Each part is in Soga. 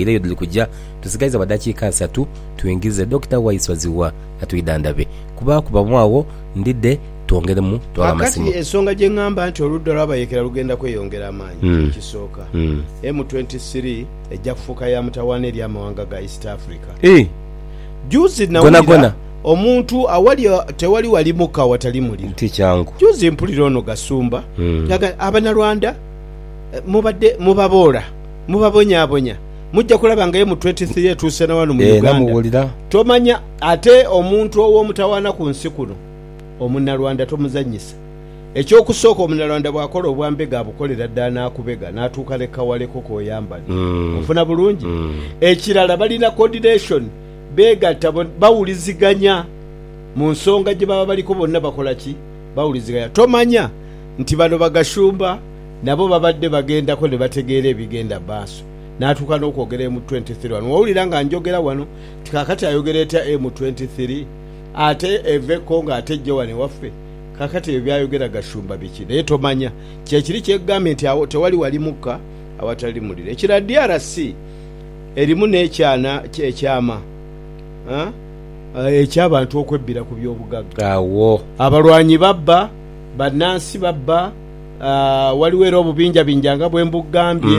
era eyo dhiri kuja. Tusigaiza bwa dakiika isatu twingize Dokita Waiswa Zziwa atwidhandhabe. Ku baakubamu agho ndidhe twongeremu twaghe amasimu. Kaakati ensonga gye ngamba nti oludda olw'abayeekera lugenda kweyongera amaanyi ekisooka, M23 ejja kufuuka ya mutawaana eri amawanga ga East Africa. Juuzi nawulira omuntu awali tewali wali muka awatali muliro. Juuzi mpulira ono Gasumba nga agamba nti Abanyarwanda mubadde mubaboola. Mubabonyabonya, muja kulaba nga emutwetisi ye etuuse na wano mu Uganda. Tomanya ate omuntu ow'omutawaana ku nsi kuno Omunalwanda tomuzanyisa. Eky'okusooka Omunalwanda bw'akola obwa mbega abukolera ddala n'akubega n'atuuka ne kawaleko k'oyambala. Onfuna bulungi? Ekirala balina coordination, beegatta bona, bawuliziganya mu nsonga gye baba baliko bonna bakola ki? Bawuliziganya. Tomanya nti bano ba Gashumba? nabo babadde bagendako ne bategeera ebigenda mu maaso natuuka n'okwogera M twenty three wano wowulira nga njogera wano nti kakati ayogera etya M twenty three ate eva e Congo ate ejje wano ewaffe kakati ebyo byayogera Gashumba biki naye tomanya kyekiri kyekugambye nti agho tewali wali mukka awatali muliro ekirala DRC erimu n'ekyana ekyama eky'abantu okwebbira ku by'obugagga agho abalwanyi babba bannansi babba. Ghaligho era obubinjabinja nga bwe mbugambye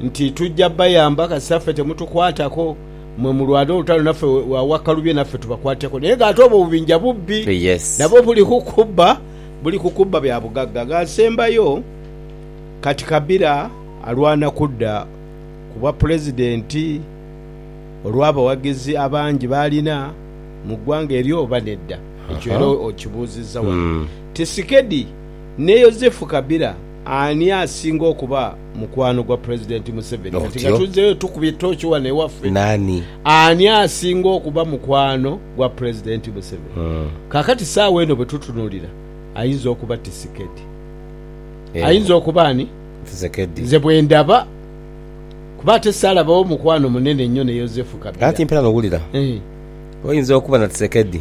nti tuja bayamba kasita ffe temutukwatako. Mwe mulwane olutalo naffe wa Wakalubye naffe tubakwateko. Naye nga ate obwo obubinja bubbi nabwo buli ku kubba, buli ku kubba bya bugagga. Nga asembayo, kati Kabira alwana kudda ku bwa Pulezidenti olw'abawagizi abangi b'alina mu ggwanga eryo oba nedda? Ekyo era okibuuzizza wano. Tisikedi. ne Yozefu Kabila ani asinga okuba mukwano gwa Pulezidenti Museveni? Kati nga tuzzeeyo tukubye toochi wano ewaffe, ani asinga okuba mukwano gwa Pulezidenti Museveni? Kaakati saawa eno bwe tutunuulira, ayinza okuba Tisikedi. Ayinza okuba ani? Nze bwe ndaba, kuba ate saalabawo mukwano munene nnyo ne Yozefu Kabila. Kaakati mperaano wulira, oyinza okuba na Tisekedi.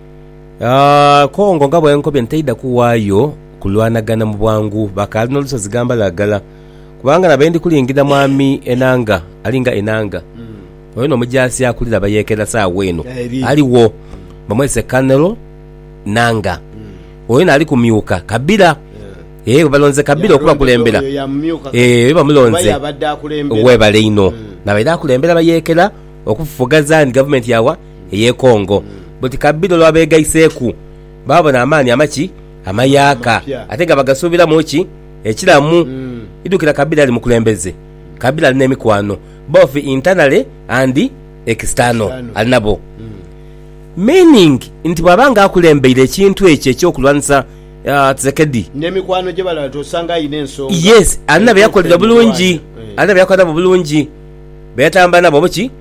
Kongo nga bwe nkobye nti taidha kuwaayo kulwanagana mu bwangu, bakaali n'olusozi Gambalagala. Kubanga na be ndi kulingirira Mwami Enanga, ali nga Enanga, oyo n'omujaasi akulira abayeekera saagho eno aligho, bamwese Colonel Nanga. Oyo naali kumyuka Kabira, ee, bwebalonze Kabira okubakulembera. Ee, oyo bamulonze. Webale inho. Nabaire akulembera bayeekera okufufugaza ni gavumenti ya wa? ey'e Congo. Buti kabira olwa beegaiseiku, baabona amaani amaki amayaaka ate nga bagasuubiramu ki ekiramu. Idhukira kabira ali mukulembeze. Kabira ali n'emikwano both internally and external ali nabo. Meaning nti bwaba nga akulembeire ekintu ekyo eky'okulwanisa Tshisekedi. N'emikwano gye balala osanga alina ensonga. Yes, alina be yakolera bulungi, alina be yakola nabo bulungi, be yatambula nabo oba ki.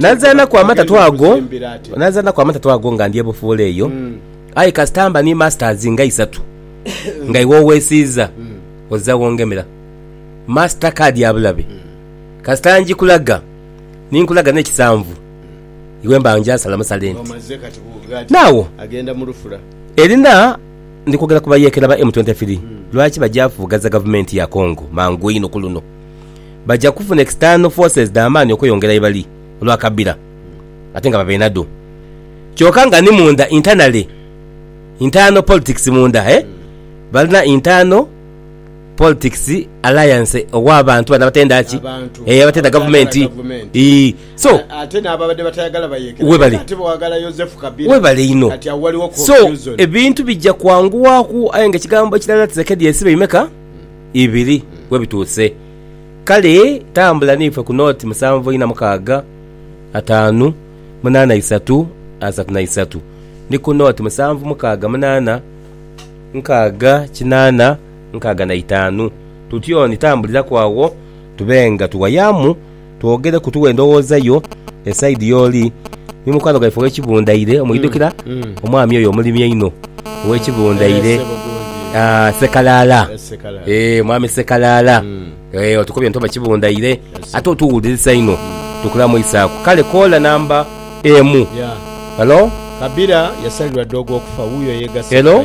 Nazaanaku amatatu ago, nazaanaku amatatu ago nga ndi ebufuula eyo, aye kasita mba ni masters nga isatu nga iwe owesiiza ozira wongemera. Master card ya bulabe. Kasita njikulaga, ni nkulaga n'ekisanvu, iwe mba ngyasala musale nti. Now, Erina ndi kwogera ku bayeekera ba M23, lwaki bagya fuugaza gavumenti ya Congo mangu einho ku luno? baja kufuna external forces dha maani okweyongera yebali olwa kabira ate nga babeina dho kyoka nga ni munda internally internal politics munda eh balina internal politics alliance owa bantu bano abatenda ki Abantu eh abatenda abatayagala gavumenti gavumenti. ii so A- Ate n'ababadde batayagala bayekera. Webale. Ate bwagala Yozefu Kabila. webale inho Kati awo waliwo so confusion. ebintu bija kwanguwaku aye nga ekigambo ekirala tusekedi ensi beimeka ibiri we bituuse. Kale tambula n'ife ku nooti musanvu ina mukaaga, ataanu, munaana isatu, asatu na isatu, ni ku nooti musanvu mukaaga munaana, nkaaga kinaana, nkaaga na itaanu. Tutyoni tambuliraku agho tube nga tuwayaamu. Twogere ku tuwe endowooza yo esaidi y'oli ni mukwano gwaife ow'ekibundaire omwidhukira, omwami oyo omulimi einho ow'ekibundaire Ssekalaala. Eeh, Mwami Ssekalaala, otukobye nti oba kibundaire ate otuwulirisa inho. Tukulamuisaaku. Kale koola namba emu. Hello? Hello?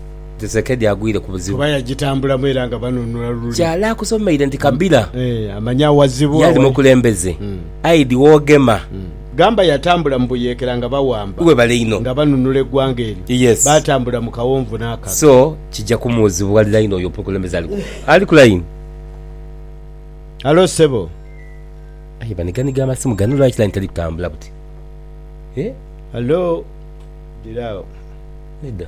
Kisekedi agwire ku buzibu. Kuba yagitambulamu era nga banunula luli. Kyala akusomeire nti Kabila yaali mukulembeze aye di wogema. Gamba yatambula mu buyeekera nga bawamba. Webale inho. Nga banunula eggwanga eryo. Yes. Baatambula mu kawonvu n'akabi. So kija kumuzibualira inho oyo omukulembeze ali ku, ali ku layini. Halo ssebo. Aye baniganiga amasimu gano lwaki layini teri kutambula buti? Halo. Dira agho. Nedda.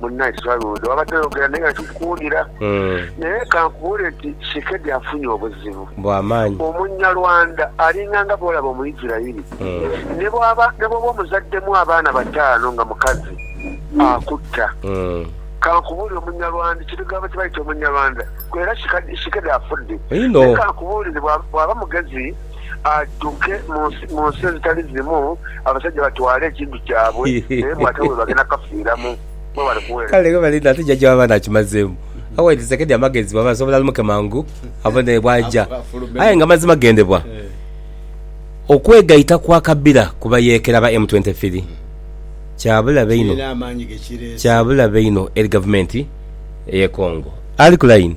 Munnaye Swaluudo waba toyogera naye nga kikuwuunira. Naye kankubuule nti Shekedi afunye obuzibu. Bwa maanyi. Omunyarwanda alinga nga bwolaba Omuisirairi. Ne bwaba, ne bwoba omuzaddemu abaana bataano nga mukazi, akutta. Kankubuulire Omunyarwanda, ekirugavu kye bayita Omunyarwanda. Era Shekedi afudde. Naye kankubuulire, bwaba mugezi. adhuke mu nsi ezitali zimu, abasajja batwale ekintu kyabwe, naye bw'atyo bwe bagenda kukafiiramu. Mwebale kuweereza. Kale ghebale inho ate jajja w'abaana akimazeemu. Awa Edisekedi amagezi bw'aba asobola alumuke mangu abone bw'aja. Aye nga mazima gendebwa okwegaita kwa Kabira ku bayeekera ba M twenty three kya bulabe inho kya bulabe inho eri Gavumenti ey'e Congo. Ali ku layini.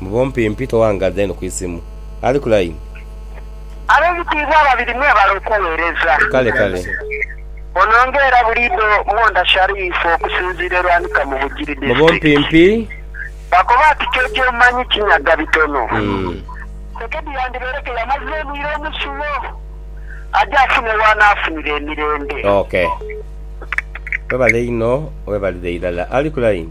Mu bumpimpi toghangaza inho ku isimu. Ali ku line. Ab'ebitiibwa ababiri mwebale okuweereza. Kale kale. Ono nga era buliidho Mwondha Sharif okusinziira e Lwanika mu Bugiri Mu District. bumpimpi. Baakoba ati Ky'oky'omanyi kinyaga bitono. Umm. Tshisekedi yandibaire ke yamaze obwire omusulo aje afune w'anaafunira emirembe. Ok. Webale inho, webalire irala. Ali ku line.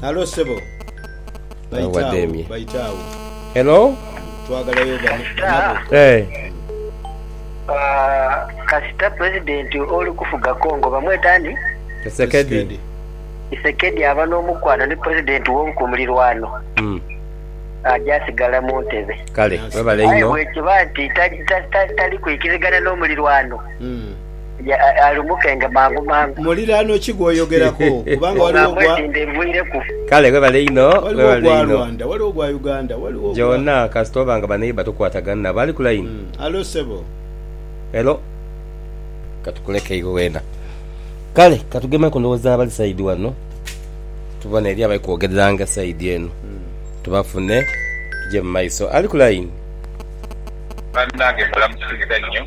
Halo sebo. Baite agho, Wademye. baite agho. Hello? Twagalayo ba- banabo. Eh. Ah, kasita president oli kufuga congo bamweta ani Kisekedi. isekedi aba n'omukwano ni president won ku mulirwano Mm. aja asigala mu ntebe Kale, webale aye inho. bwekiba nti ta- ta- ta- tali kwikirigana n'omulirwano Mm. ye alumukenge mangumangu. Muliraanwa ki gw'oyogerako? Kubanga waliwo ogwa. Ong'ambwe nti ndhevuireku. Kale webale inho waliwo ogwa Rwanda, waliwo ogwa Uganda, waliwo ogwa. Gyona kasita oba nga baneighbour tokwatagana nabo. Ali ku line? Hallo ssebo. Hello. Katukuleke iwe weena. Kale katugemeku ndowooza abali side wano tubone eriyo abali kwogereranga side eno tubafune tugye mu maiso. Ali ku line? Banange mbalamusiza nyo.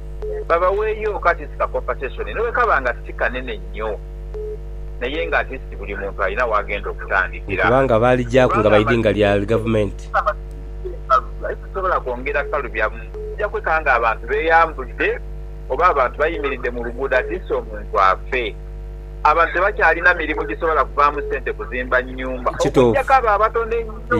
babaweeyoku at least ka compensation nobwekaba nga si kanene nnyo naye nga at least buli muntu alina wagenda okutandikira. Kubanga baalijaku nga baidinga lya gavumenti. Aye sisobola kwongera kukalubyamu okujja kwekanga nga abantu beyambudde oba abantu bayimiridde mu luguudo at least omuntu afe. Abantu tebakyalina mirimu gisobola kuvaamu sente kuzimba nnyumba okujjako abo abatono ennyo.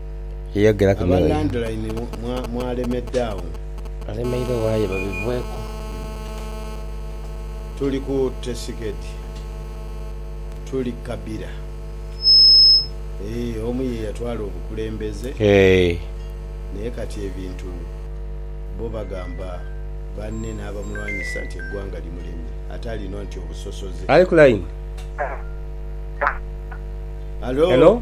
Yeyogeraku n'oyo. Aba landline mwalemedde awo. Alemeire owaye babivweku. Tuli ku tesiketi tuli kabira eeh omu yeyatwala obukulembeze naye kati ebintu bo bagamba banne n'abamulwanyisa nti eggwanga limulemye ate alina nti obusosoze. Ali ku line. Hello.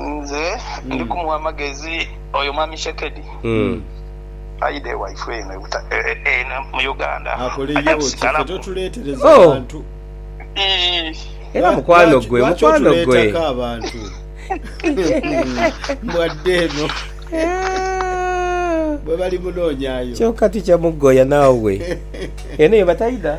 Nze ndi kumugha amagezi oyo mwami Shekedi aidhe ewaifwe eno eno mu Uganda aje kusigalamu. Ii. Era mukwano gwe mukwano gwe abantu mbwadde eno bwebali munonyayo kyoka tikyamugoya nawe eno yebataidha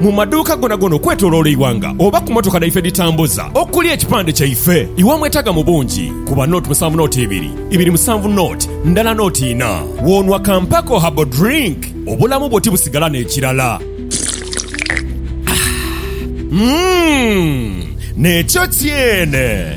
Mu maduuka gonagona okwetoloola eighanga oba ku motoka dhaife edhitambuza okuli ekipande kyaife, iwe omwetaaga mu bungi, kuba note musanvu note ibiri, ibiri musanvu note ndala note ina. Bw'onwa ka Mpeko Herbal Drink, obulamu bwo tibusigala n'ekirala. Umm! Nekyo kyene!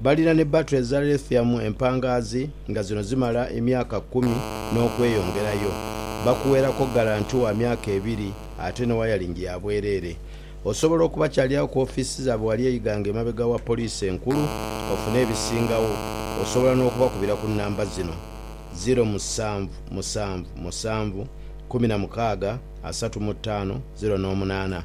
Balina ni batu eza lithium empangaazi nga zino zimala emyaka kumi n'okweyongerayo. Bakuweerako ggalanti wa myaka ebiri ate ne wayalingi ya bwereere. Osobola okubakyalirawo ku ofiisi zaabwe wali e Iganga emabega wa poliisi enkulu ofune ebisingawo. Osobola n'okubakubira ku nnamba zino, ziro musanvu musanvu musanvu kkumi na mukaaga asatu mu ttaano ziro n'omunaana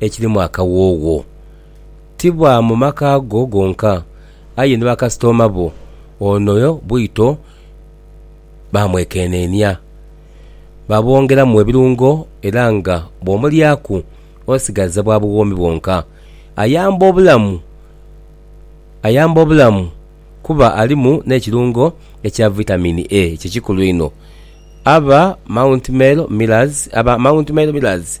ekirimu akawoowo. Ti bwa mu maka go gonka, aye ni bakasitooma bo ono bwito baamwekeneenia. Baabwongeramu ebirungo era nga bw'omulyaku osigaza bwa buwoomi bwonka. Ayamba obulamu ayamba obulamu kuba alimu n'ekirungo ekya Vitamin A ekikulu einho aba Mount Mel Millers aba Mount Mel Millers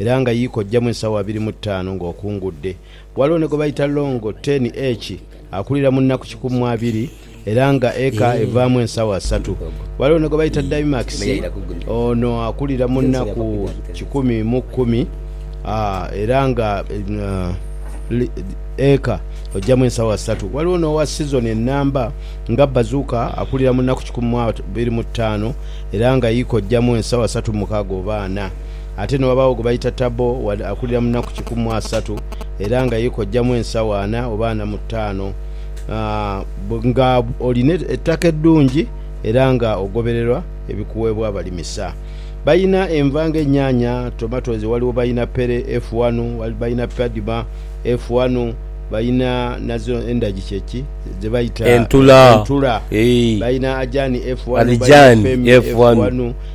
era nga yii kojjamu ensaawa abiri mu ttaanu ng'okungudde. Ghaligho ni gwe baita Longo Ten Eki akulira mu nnaku kikumi abiri era nga eka evaamu ensaawa asatu. Ghaligho ni gwe baita Daimax, ono akulira mu nnaku kikumi mu kumi era nga eka ojjamu ensaawa asatu. Ghaligho n'owa sizoni ennamba nga Bazuka akulira mu nnaku kikumi mu abiri mu ttaanu era nga yii kojjamu ensaawa asatu mu mukaaga oba ana. Ate ni ghabagho gwe baita Tabo wade akulira mu naku kikumi mu asatu era nga ye kojjamu ensawo ana oba ana mu taano. Aah nga olina ettaka eddungi era nga ogobererwa ebikuweebwa abalimisa. Balina enva nga enyaanya, tomatoes, waliwo balina pere F wanu, balina padma F wanu, balina nazo endagi kye ki? ze baita Entula. entula, Eeh. Balina ajaani F wanu, balina Adhijani femi F F wanu. wanu.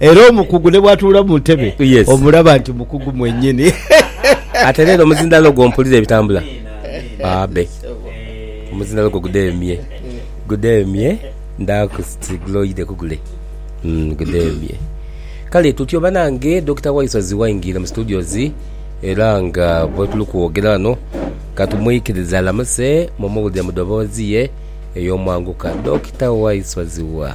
Era omukugu ne bw'atuula mu ntebe, omulaba nti mukugu mwennyini. Ate leero omuzindaalo gwo mpulira ebitambula. Abe. Omuzindaalo gwo gudeemye. Gudeemye. Ndhaaku ti guloide ku gule. Gudeemye. Kale tutyo banange, Dokita Waisozi waingiire mu studios era nga bwetuli kwogera ghano katumwikirize alamuse mumuwulire mu dhobozi ye ey'omwanguka. Dokita Waisozi wa?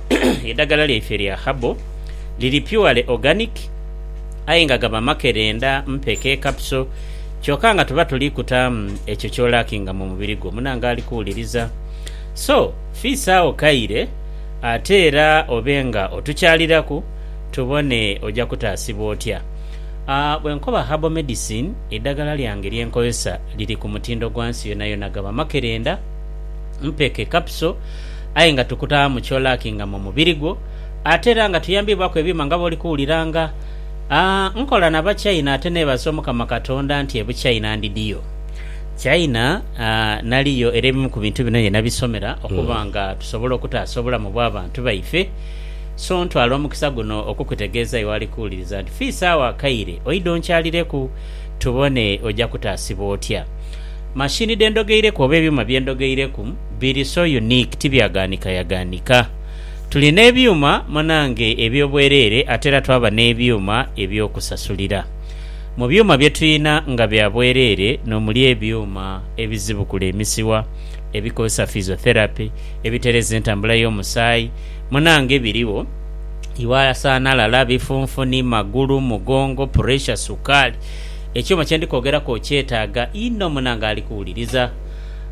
Edhagala lyaife lya herbal liri purely organic aye nga gaba makerenda, mpeke, capsule kyoka nga tuba tuli kutaamu ekyo ky'olackinga mu mubiri gwo. Munange ali kuwuliriza? So, fiisagho kaire ate era obe nga otukyaliraku tubone oja kutaasibwa otya. Bwe nkoba herbal medicine, edhagala lyange lye nkozesa liri ku mutindo gwa nsi yonayona. Gaba makerenda, mpeke, capsule. aye nga tukuta mu kyolaki nga mu mubiri gwo, ate era nga tuyambiibwaku ebyuma nga bw'oli kuwuliranga. A Nkola na Bachina ate neebaza Omukama Katonda nti e Buchina ndidiyo. China a naliyo era ebimu ku bintu bino ye nabisomera okuba nga tusobola okutaasa obulamu bw'abantu baife. So ntwala omukisa guno okukutegeeza iwe ali kuwuliriza nti fiisa agho akaire oidhe onkyalireku tubone oja kutaasibwa otya. Machine dhe ndhogeireku oba ebyuma bye ndhogeireku, Biri so unique tibyaganhikayaganika. Tuli n'ebyuma munange eby'obwereere ate era twaba n'ebyuma eby'okusasulira. Mu byuma bye tulina nga bya bwereere n'omuli ebyuma ebizibukula emisiwa, ebikozesa physiotherapy, ebitereeza entambula y'omusaayi, munange birigho, iwe asanhalala, bifunfuni, magulu, mugongo, puresha, sukaali. Ekyuma kye ndi kwogeraku okyetaaga inho munange ali kuwuliriza.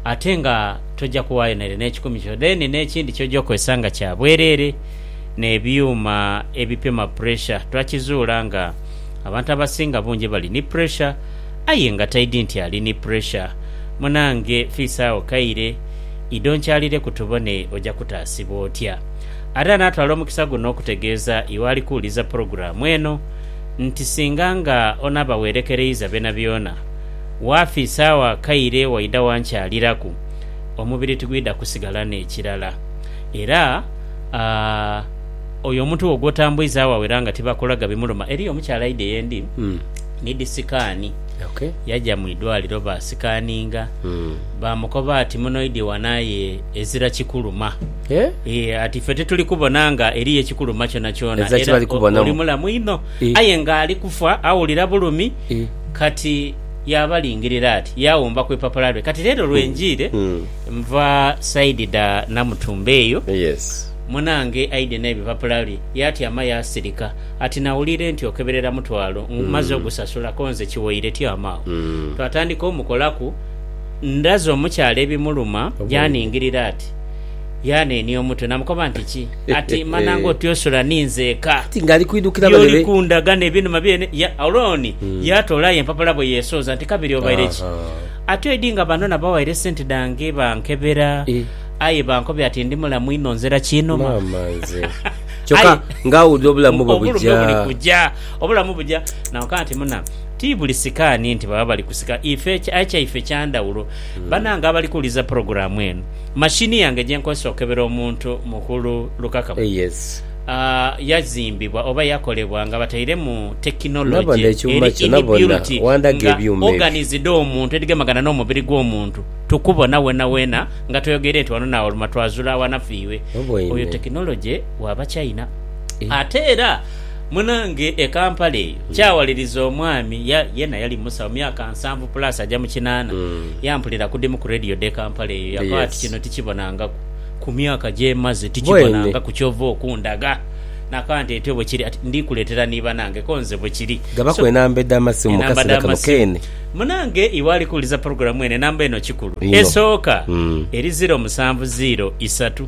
ate nga toja kuwayo nere n'ekikumi kyo then n'ekindi kyoja okozesa nga kya bwerere n'ebyuma ebipima pressure twakizuula nga abantu abasinga bungi bali ni pressure aye nga taidi nti ali ni pressure munange fiisa agho kaire ido nkyalireku tubone oja kutaasibwa otya Ate anatwala omukisa guno okutegeeza iwe ali kuwuliza pulogulaamu eno nti singa nga onaaba werekereiza byonabyona Waafa isaawa akaire waidha wankyaliraku, omubiri tigwidha kusigala n'ekirala. Era a oyo omuntu wo gw'otambuiza agho awera nga tibakulaga bimuluma. Eriyo omukyala aidha ye ndi nidhi sikaani, yaja mu idwaliro baasikaaninga, baamukoba ati munoidhie wano aye ezira kikuluma. Ee, ati ife tituli kubona nga eriyo ekikuluma kyonakyona, era oli mulamu inho. Aye ng'ali kufa awulira bulumi. Kati yaabalingirira ati, yaawumba ku ipapula lwe. Kati leero lwe njiire nva saidi dha Namutumba eyo, munaange aidye n'ebipapula bye. Yaatyama yaasirika ati, Nawuliire nti okeberera mutwalo mmaze ogusasula konze kiwoire tyama agho. Twatandika omukolaku. Ndaze omukyala ebimuluma yaaningirira ati. Yaanenia omutwe, naamukoba nti, Ki ati mana ng'otyosula ni nzeka? By'oli kundaga n'ebinuma byene. Alooni yaatoola aye empapula bwe yeesooza nti, Kabiri obaire ki? Ati oidhi nga bano nabawaire esente dhange bankebera, aye bankobya ati ndi mulamu inho nzira kiinuma. Obulumi buli kuja. Naamukoba nti, Muna, ti buli sikaani nti baba bali kusika. Aye kyaife kya ndhawulo. Banange abali kuwuliriza pulogulaamu eno, Mashini yange gye nkozesa okukebera omuntu mughulu lukaka yazimbibwa oba yakolebwa nga batairemu tekinoloje eri inbuilt nga organs dh'omuntu edhigemagana n'omubiri gw'omuntu. Tukubona wenaweena nga tweyogeire nti wano n'awoluma twazula awanafiirwe. Oyo tekinoloje wa Bachina. Ate era. Munange e Kampala eyo kyawaliriza omwami ya yena yali musawo myaka nsanvu plus aja mu kinaana yampulira kudimu ku radio dhe Kampala eyo yakoa ati kino tikibonangaku ku myaka gyemaze tikibonangaku kyova okundaga nakoa nti etyo bwekiri ati ndikuletera ni banange ko nze bwekiri so enamba dha masimu munange iwe ali kuwuliza program eno enamba eno kikulu esooka eri ziro musanvu ziro isatu.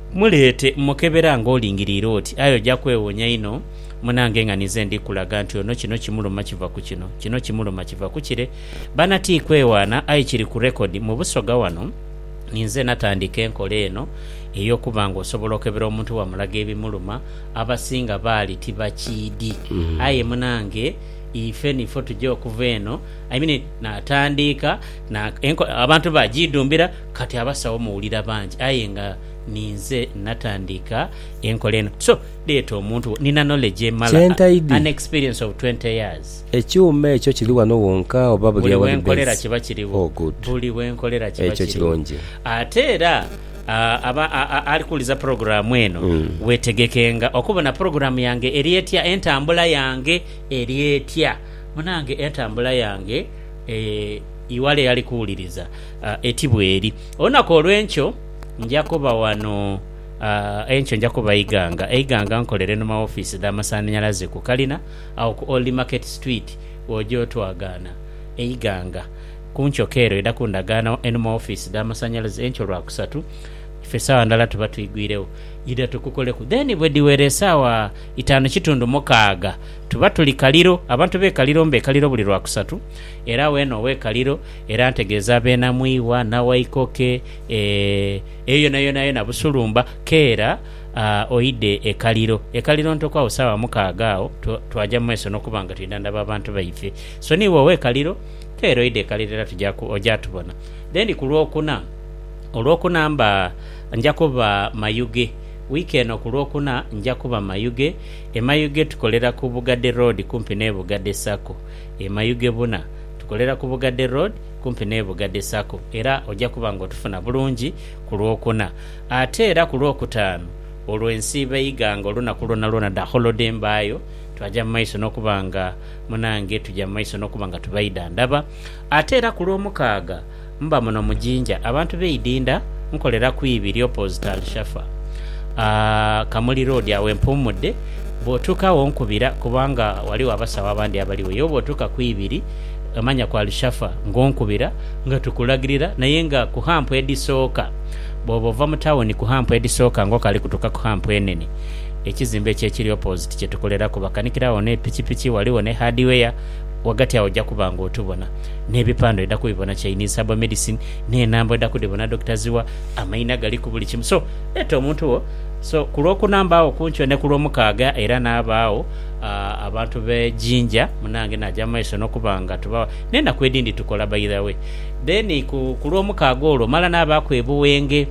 Muleete, mmukebera nga olingiriire oti, aye oja kwewonia inho. Munange nga ninze ndi kulaga nti ono kino kimuluma kiva ku kino, kino kimuluma kiva ku kire. Baana ti kwewaana, aye kiri ku rekodi. Mu Busoga wano ninze natandika enkola eno ey'okuba nga osobola okebera omuntu wamulaga ebimuluma. Abasinga baali tibakiidi. Aye munange ife nifo tuja okuva eno. I mean, natandiika na, enkola abantu bagiidhumbira. Kati abasawo muwulira bangi aye nga ninze natandiika enkola eno so leeta omuntu wo nina knowledge emala an experience of 20 years. Ekyuma ekyo kiri wano wonka oba buli awali base? Oh good. Ekyo kirungi. Ate era aba ali kuwuliza pulogulaamu eno weetegekenga okubona pulogulaamu yange eri etya, entambula yange eri etya. Munange entambula yange, iwala eyali kuwuliriza, a eti bweri. Olunaku olw'enkyo nja kuba wano a enkyo nja kuba eighanga eighanga nkolere nu ma wofiisi dha masanhalaze ku kalina agho ku Old Market Street bw'oja otwagaana eighanga ku nkyoka ere oidha kundagaana wa enu ma wofiisi dha masanhalaze enkyo Lwakusatu ife saawa ndhala tuba twigwiregho idha tukukoleku then bwe dhiwera esaawa itaanu kitundu mukaaga tuba tuli Kaliro abantu b'e Kaliro mba e Kaliro buli Lwakusatu Era weene ow'ekaliro, era ntegeeza beena mu iwa na waikoke, e, eyo yonayona yona busulumba, keera a, oide e kaliro, e kaliro ntoku agho saawa mukaaga agho, twa, twaja mu maiso n'okuba nga twidha ndaba abantu baife. So niiwe ow'ekaliro, keera oide e kaliro era tuja ku, oja tubona. Then ku Lwokuna, Olwokuna mba, nja kuba Mayuge. Wiiki eno ku Lwokuna nja kuba Mayuge. E Mayuge tukolera ku Bugade Road kumpi n'e Bugade Sacco. E Mayugebuna tukolera ku Bugadde Road kumpi n'e Bugadde Sacco era oja kuba ng'otufuna bulungi ku Lwokuna. Ate era ku Lwokutaanu olwo ensiiba eiga ng'olunaku lwonalwona dha holode mbaayo, twaja mu maiso n'okuba nga munange tuja mu maiso n'okuba nga tubaidha ndaba. Ate era ku Lwomukaaga. Mba muno mu Jinja abantu b'e Idinda nkolera ku ibi ri opposite Alshafa, Kamuli Road agho empuumudde. Bw'otuuka agho onkubira kubanga ghaligho abasawo abandi abaligho. Ye oba otuuka ku ibi ri emanya ku Alshafa ng'onkubira nga tukulagirira naye nga ku hampu edhisooka. Bw'oba ova mu tawuni ku hampu edhisooka ng'okali kutuuka ku hampu enene, ekizimbe ekyo ekiri opposite kye tukoleraku bakanikira agho n'epikipiki, ghaligho ne hardware, ghagati agho oja kuba ng'otubona. nebipandho oida kubibona Chinese herbal medicine nenamba oida kudhibona Doctor Zziwa amaina gali kubuli kimu so leta omuntu wo so kulwokuna mbaagho kunkyo nekulwomukaaga era nabaagho abantu be Jinja munange naja mumaiso nokuba nga tuba nenaku edindi tukola by the way then ku kulwomukaaga olwo mala nabaaku e Buwenge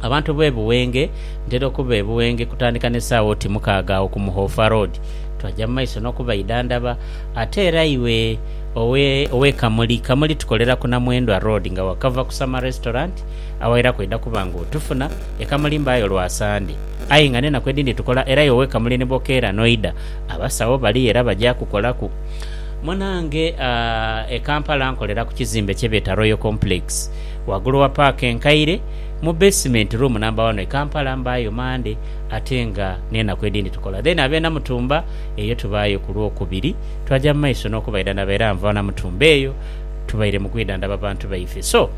abantu be Buwenge ntera okuba e Buwenge kutandika nesaawa oti mukaaga agho ku Muhoofa road twaja mumaiso nokubaidhandhaba ate era iwe Owe owe Kamuli Kamuli tukolera ku Namwendwa road nga wakava ku Summer Restaurant awairaku oidha kuba nga otufuna. E Kamuli mbaayo lwa Sande aye nga n'enaku edhindi tukola era yowe Kamuli ni bwokeera n'oidha abasawo baliyo era baja kukolaku. Munange aah e Kampala nkolera ku kizimbe kye beeta Royal Complex wagulu wa paaka enkaire mu basement room namba wano. E Kampala mbaayo Mande ate nga n'enaku edhindi tukola then ab'e Namutumba eyo tubaayo ku Lwokubiri Twaja mu maiso n'okubaidhana ba era nva na Mutumba eyo tubaire mu kwidhandhaba bantu baife. So,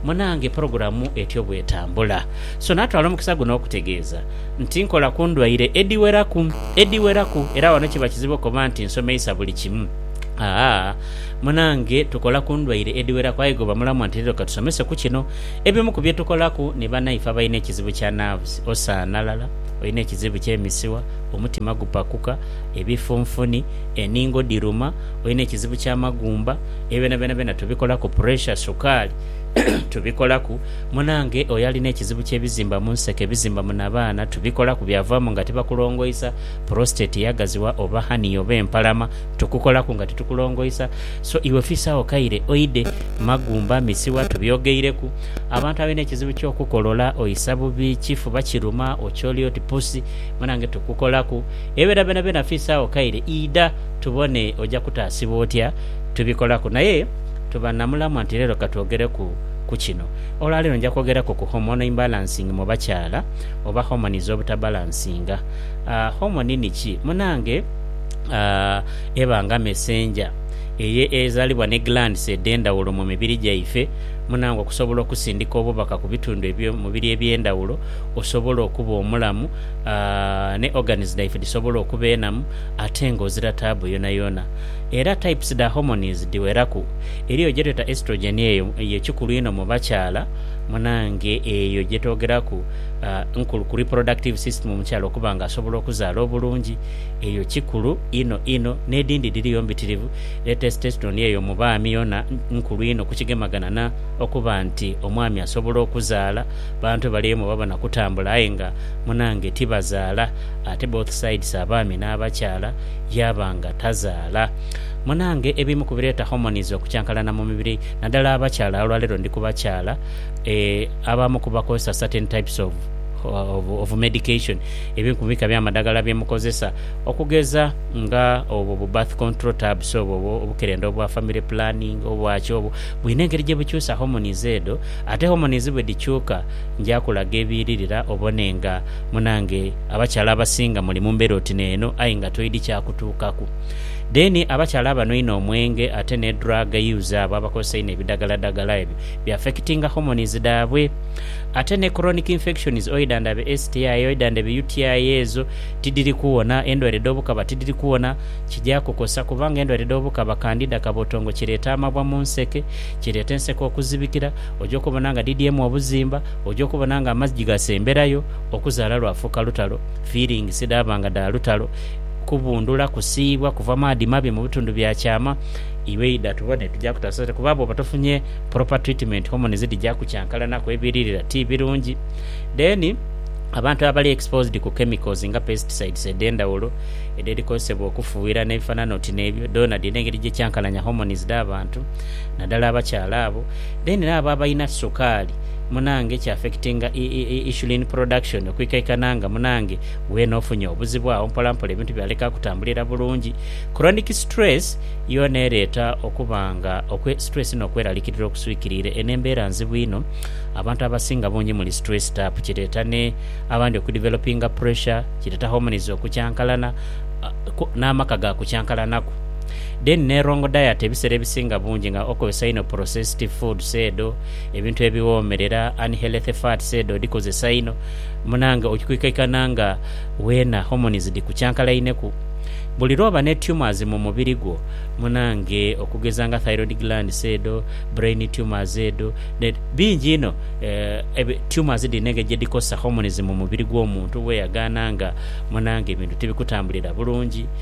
munange pulogulamu etyo bw'etambula. So, naatwala omukisa guno okutegeeza nti nkola ku ndwaire edhiweraku, edhiweraku, era wano kiba kizibu okoba nti nsomeisa buli kimu. Aa, munange tukola ku ndwaire edhiweraku aye ghooba mulamu nti leero ka tusomese ku kino. Ebimu ku bye tukolaku ni banaife abalina ekizibu kya nerves, osaanalala, olina ekizibu ky'emisiwa, omutima gupakuka, ebifunfuni, eningo dhiruma, olina ekizibu kya magumba, ebyo byona byona byona tubikolaku, pressure, sukaali tubikolaku, munange oyo alina ekizibu kye bizimba munseke, ebizimba mu nabaana tubikolaku byavamu nga tibakulongoisa, prostate yagaziwa oba hernia oba empalama tukukolaku nga titukulongoisa, so iwe fisa agho kaire oide, magumba, misiwa tubyogeireku, abantu abalina ekizibu kyo kukolola, oisa bubi, kifuba kiruma, okyoli oti pusi munange tukukolaku. Ebera byonabyona fiisagho kaire idha tubone oja kutaasibwa otya. Tubikolaku naye tuba na mulamwa nti leero ka twogereku ku kino. Olwa leero nja kwogereku ku hormone imbalancing mu bakyala oba hormone z'obutabalansinga. Hormone ni ki? Munange eba nga messenger eye ezalibwa ni glands edh'endhaghulo mu mibiri gyaife munange okusobola okusindika obubaka ku bitundu eby'omubiri eby'endhaghulo osobole okuba omulamu. ne organs dhaife dhisobola okuba enamu ate nga ozira taabu yonayona. Era types dha hormonies dhiweraku. Eriyo gyetweta estrogen eyo ye kikulu inho mu bakyala munange eyo gyetogeraku nkulu ku reproductive system omukyala okuba nga asobola okuzaala obulungi eyo kikulu inho inho nedhindhi dhiriyo mbitirivu era testosterone eyo mu baami yona nkulu inho kukigemagana na okuba nti omwami asobola okuzaala. Abantu bali eyo mwebaba nakutambula aye nga munange tibazaala ate both sides abaami n'abakyala yaaba nga tazaala. Munange ebimu ku bireeta hormones okukyankalana mu mibiri naddala abakyala olwaleero ndi ku bakyala eeh abamu ku bakozesa certain types of of of medication ebimu ku bika by'amadagala bye mukozesa okugeza nga obwo bu birth control tabs obwo obwo obukerenda obwa family planning obwaki obwo bwine engeri gye bukyusa hormones edho ate hormones bwe dhikyuka Nja kulaga ebiiririra obone nga munange abakyala abasinga muli mu mbera oti neeno aye nga toidhi kya kutuukaku. Then abakyala abanhwa inho omwenge ate ne drug use abo abakozesa inho ebidagaladagala ebyo bi affectinga hormones dhaabwe. Ate ne chronic infections oidha ndha be STI oidha ndha be UTI ezo tidhiri kuwona, endwaire dh'obukaba tidhiri kuwona. Kija kukosa kubanga endwaire dh'obukaba kandida kabotongo kireeta amabwa mu nseke, kireeta enseke okuzibikira, oja okubona nga dhidhyemu obuzimba, oja okubona nga amazji gasemberayo, okuzaala lwafuuka lutalo, feelings dhaaba nga dha lutalo, kubundhula, kusiiyibwa, kuva maadhi mabi mu bitundu bya kyama. Iwe idha tubone tuja kutaasa sente kuba bwoba tofunye proper treatment hormones dhija kukyankalanaku ebiririra ti birungi. Then abantu abali exposed ku chemicals nga pesticides edhendhawulo edheri kozesebwa okufughira n'ebifanana oti n'ebyo, dhoonadhoona engeri gye kyankalanya hormones dha bantu nadhala abakyala abo. Then era abo abalina sukaali munange ki affectinga insulin production okwikaikana nga munange weena ofunye obuzibu agho mpola mpola ebintu byaleka kutambulira bulungi. Chronic stress yoona ereeta okuba nga okwe stress n'okweralikirira okuswikiriire. Eno embeera nzibu inho abantu abasinga bungi muli stressed up kireeta ne abandi oku developinga pressure, kireeta hormones okukyankalana n'amaka gaakukyankalanaku. Then ne wrong diet ebisera ebisinga bungi nga okozesa inho processed foods edho, ebintu ebiwomerera, unhealthy fats edho odikozesa inho munange okwikaikana nga wena hormones dhikukyankalaineku. Buli lwoba ne tumors mu mubiri gwo munange okugeza nga thyroid glands edho, brain tumors edho ne bingi inho eeh tumors dhino engeri gyedhikosa hormones mu mubiri gwo muntu weyagaana nga munange ebintu tibikutambulira bulungi.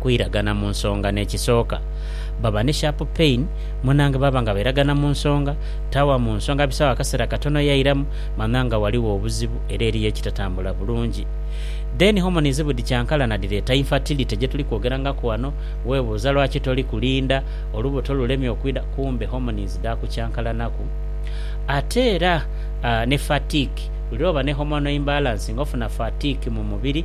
kwiragana mu nsonga n'ekisooka. Baba ni sharp pain, munange baba nga bairagana mu nsonga, tawa mu nsonga bisaawo akaseera katono yairamu, manya nga ghaligho obuzibu era eriyo ekitatambula bulungi. Then hormones budi kyankalana dhireeta infertility gyetuli kwogerangaku ghano, webuuza lwaki toli kulinda, olubuto lulemye okwidha kumbe hormones dhaakukyankalanaku. Ate era ni fatigue, buli lwoba ni hormonal imbalance nga ofuna fatigue mu mubiri,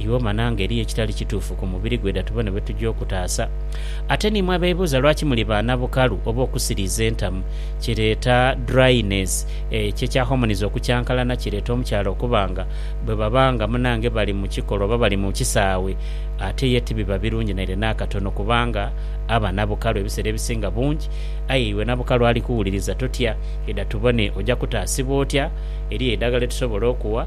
Iwe omana nga eriyo ekitali kituufu ku mubiri gwe da tubone bwetuja okutaasa. Ate niimwe abeebuuza lwaki muli ba na bukalu oba okusiriiza entamu, kireeta dryness, ekyo ekya hormones okukyankalana kireeta omukyala okuba nga bwebaba nga munange bali mu kikolwa oba bali mu kisaawe ate ye tibiba birungi naire n'akatono kubanga aba na bukalu ebiseera ebisinga bungi. Aye iwe na bukalu ali kuwuliriza totya, idha tubone oja kutaasibwa otya? Eriyo eidagala lyetusobola okuwa.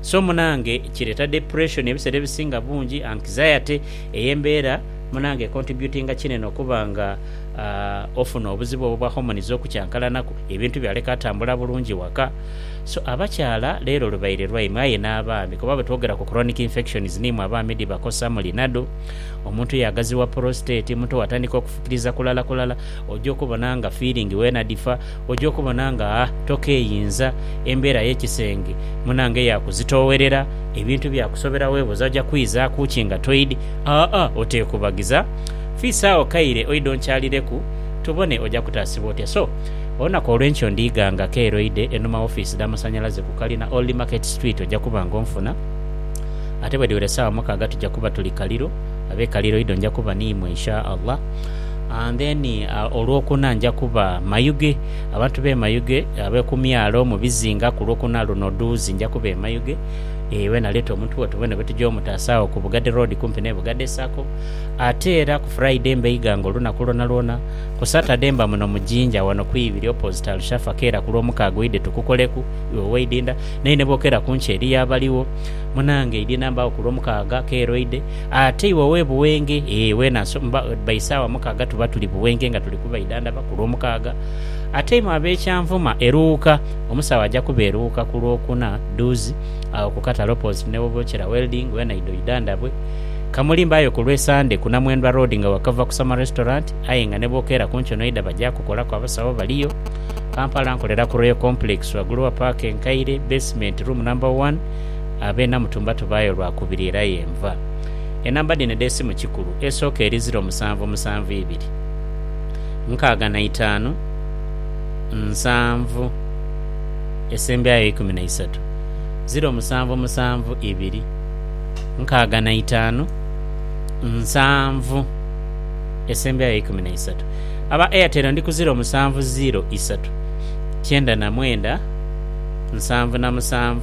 So munange kireeta depression ebisera ebisinga bungi, anxiety, eyo embeera munange econtributinga kinene okuba nga ofuna obuzibu obwo bwa hormones okukyankalanaku, ebintu byaleka atambula bulungi waka. So abakyala lero lubaire lwaimwe aye n'abaami kuba bwetwogera ku chronic infections nimwe abaami dhibakosa muli nadu omuntu yagaziwa prostate, omuntu watandika okufukiriza kulala kulala oja okubona nga feeling wena dhifa. oja okubona nga tokeeyinza, embeera y'ekisenge munange yaakuzitoowerera, ebintu byakusobera weebuuza oja kwizaaku ki nga toidhi. Aa oteekubagiza, fiisa agho kaire oidhe onkyalireku tubone oja kutaasibwa otya. So, olunaku olw'enkya ondhiiga nga keeroidhe enhuma w'ofiisi dh'amasanhalaze ku kalina Old Market Street oja kuba nga onfuna. Ate bwedhiwera esaawa mukaaga tuja kuba tuli Kaliro, ab'e Kaliro idho nja kuba niimwe Insha Allah. And then olwokuna nja kuba Mayuge, abantu be Mayuge abekumyalo mubizinga kulwokuna luno dhuuzi nja kuba e Mayuge ee wena leta omuntu wo tubone bwetuja omutaasa agho ku Bugade Road kumpi ne Bugade Sacco ate era ku Friday mba Iganga olunaku lwona lwona, ku Saturday mba muno mu Jinja wano ku ibiri opposite Alshafa keera kulwomukaaga oidhe tukukoleku iwe weidinda naye nebwokera kunkyo eriyo abaligho munange idinda mbagho kulwomukaaga keera oidhe. Ate iwe ow'e Buwenge, ee weena bba isaawa mukaaga tuba tuli Buwenge nga tuli kubaidhandhaba ku Lwomukaaga. Ate imwe ab'e Kyanvuma e Luuka, omusawo aja kuba e Luuka ku Lwokuna dhuuzi, agho ku katale opposite ni Webochera Welding, weena idho oidhandhabwe. Ka muli mbaayo ku lw'e Sande ku Namwendwa Road nga wakava ku Summer Restaurant aye nga ni bwokeera ku nkyo n'oidha baja kukolaku abasawo baliyo. Kampala nkolera ku Royal Complex wagulu wa paaka enkaire, basement, room number one. Ab'e Namutumba tubaayo lwa kubiri era ye nva enamba dhino edh'esimu Kikulu esooka eri ziro musanvu musanvu ibiri nkaaga na itaanu nsanvu esembyayo eikumi na isatu ziro musanvu musanvu ibiri nkaaga na itaanu nsanvu esembyayo eikumi na isatu Aba Airtel ndi ku ziro musanvu ziro isatu kyenda na mwenda nsanvu na musanvu.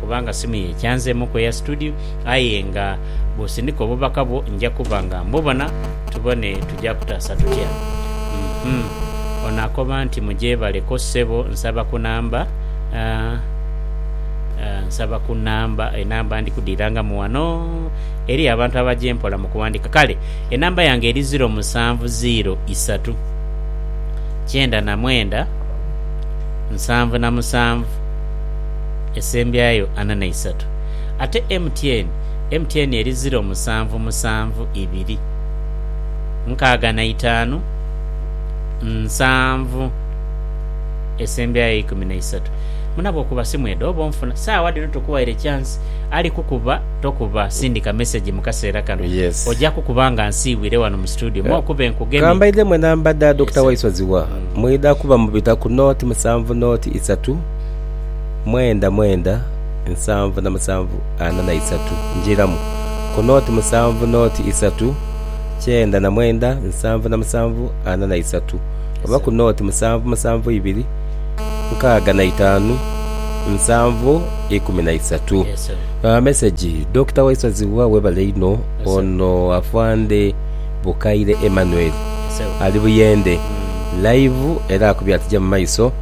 kubanga simu ye kyanzeemuku eya situdiyo aye nga bw'osindika obubaka bwo nja kuba nga mbubona tubone tuja kutaasa tutya. Uhmm. Ono akoba nti mugyebaleko ssebo nsaba ku namba aah aah nsaba ku namba enamba ndi kudhiirangamu wano eriyo abantu abaja empola mu kuwandiika kale enamba yange eri ziro musanvu ziiro isatu kyenda na mwenda nsanvu na musanvu. esembyayo ana na isatu ate MTN MTN eri ziro musanvu musanvu ibiri nkaaga na itaanu nsanvu esembyayo ikumi na isatu muna bwokuba simu edho oba onfuna saawa dhino tukuwaire chance ali kukuba tokuba sindika message mukaseera kano Yes. oja kukuba nga nsiibwire wano mu studio mo okube nkugemye Kambaidhemu enamba dha Dokita Waiso Zziwa mwidha kuba mubita ku nought musanvu nought isatu mwenda mwenda nsanvu na musanvu ana na isatu njiramu ku noti musanvu noti isatu kyenda na mwenda nsanvu na musanvu ana na isatu oba ku noti musanvu musanvu ibiri nkaaga na itaanu nsanvu ikumi na isatu. Yes, sir. Uh, message Dokita Waisozi wa webale inho Yes, sir. ono afande Bukaire Emmanuel Yes, sir. ali buyende live era akubye atija mu maiso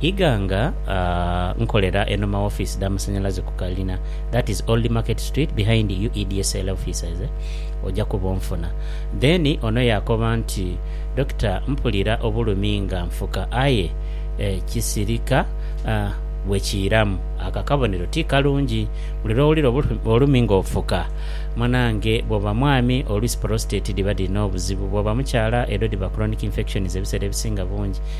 Iga nga nkolera eno ma office dha masanyalaze ku kalina that is old market street behind UEDSL offices oja kuba onfuna. Then ono yakoba nti Doctor mpulira obulumi nga nfuka aye kisirika bwe kiiramu ako akabonero ti kalungi buli lwowulira obulumi nga ofuka munange bwoba mwami oluisi prostate dhiba dhirina obuzibu bwoba mukyala edho dhiba chronic infections ebisera ebisinga bungi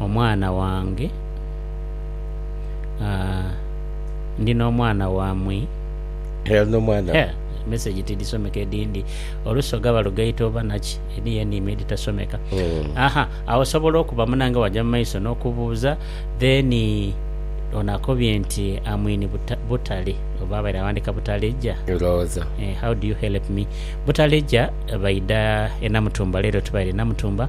omwana wange, aah, ndi n'omwana wamwi. Hell n'omwana Hell, message tidisomeka edindi olusoga balugaita oba naki, eriyo eniimo editasomeka. Mm. Aha, agho osobola okuba munange waja mumaiso n'okubuuza, then ono akobye nti amwini buta, Butale, oba abaire awandika Butaleja? Ndhowooza. Eh, how do you help me? Butaleja baidha e Namutumba, leero tubaire Namutumba,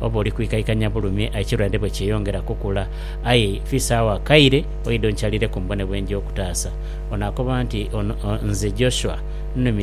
Oba oli kwikaikanya bulumi ekirwadde bwe kyeyongera okukula. Aye fiisagho akaire oidhe onkyalireku mbone bwe nja okutaasa. Onaakoba nti, Ono nze Joshua, nnumiza.